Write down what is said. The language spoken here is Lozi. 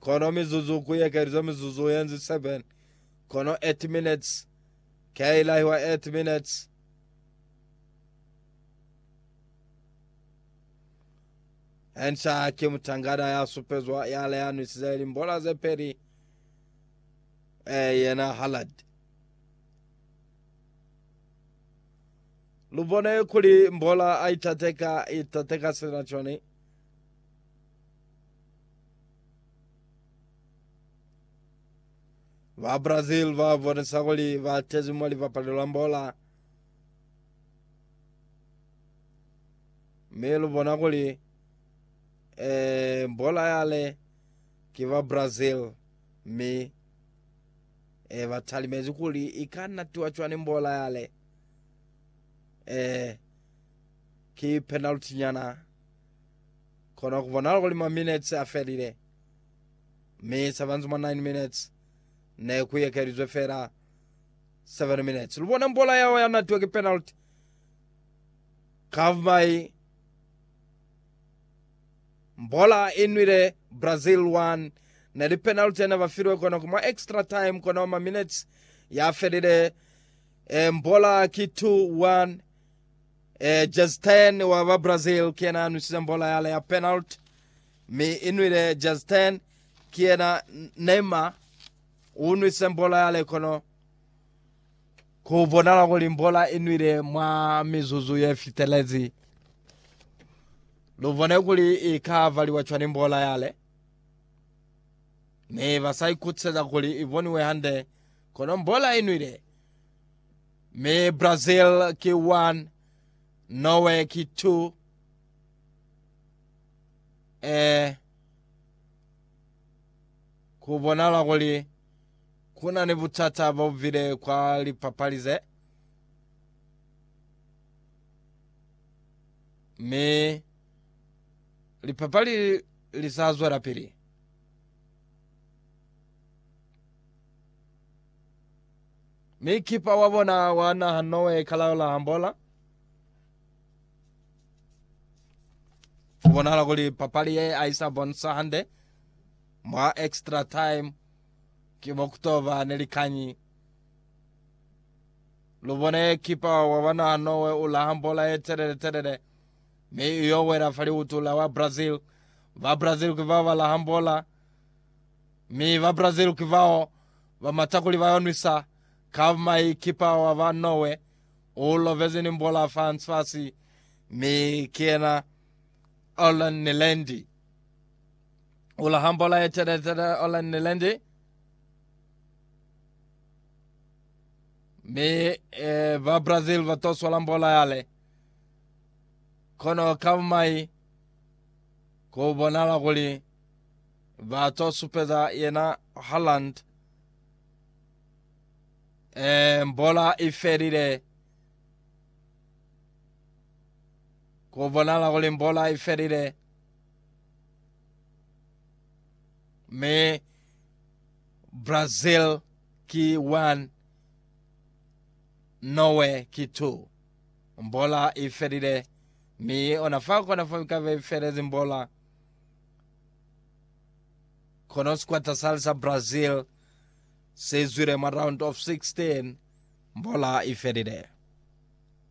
Kono mizuzu ku ekelizwe mizuzu yenzi 7, kono 8 minutes ke i lahiwa 8 minutes. Enca ki mutangana ya supezwa ya leanwisize limbola ze peli, e yena Hallard. Lu bone kuli mbola a itateka, itateka sina cone. Ba Brazil ba bonisa kuli ba tezi mwa lipapali la mbola mi lu bona kuli eh, mbola yale ki ba Brazil mi eh, ba talimezi kuli i ka natiwa cwani mbola yale eh, ki penalty nyana Kono ku bonahala kuli ma minetsi a felile, mi sa banzi mwa nine minutes ne ku ekelizwe fela seven minutes. Lu bona mbola yao ya natiwa ki penalty kavumai. Mbola i nwile Brazil one. Ne li penalty yene ba filwe kono ku mwa extra time kono ma minetsi ya felile. E, mbola ki two one. E, Jezi Ten wa ba Brazil ki yena a nwisize mbola yale ya penalty, mi i nwile Jezi Ten. Ki yena Neymar u nwisize mbola yale, kono ku bonala kuli mbola i nwile mwa mizuzu ye fitelezi. Lu bone kuli i ka valiwa cwani mbola yale, mi ba sa ikutiseza kuli i boniwe hande, kono mbola i nwile. Mi Brazil ki 1, Norway ki 2. E, ku bonala kuli ku na ni butata bo bile kwa lipapali ze. Mi lipapali li sa zwela pili. Mi kipa wa bona wa naha Noe kalaula hambola. Kubonahala kuli papali ye aisa bonisa hande mwa extra time ki bokutoba ne likanyi. Lubone kipa wa bona Noe ula hambola ye telele telele mi iyo wela fa liutu la wa Brazil. Ba Brazil ki bao bala hambola mi ba Brazil ki bao Ba mata kuli ba yo nwisa Kavmai kipa wa ba Norway u lovezi ni mbola fa Ansfasi mi ki yena Orland Nilendi u laha mbola ye teletele Orland Nilendi mi e, ba Brazil ba to swala mbola yale kono Kavmai ku bonala kuli Ba to supeza yena Haaland. Eh, mbola i felile. Ku bonala kuli mbola i felile. Mi Brazil ki 1 Norway ki 2 mbola i felile mi ona fa kona fa ka be felezi mbola Kono sikwata sali sa Brazil si zwile mwa round of 16 mbola ifelile.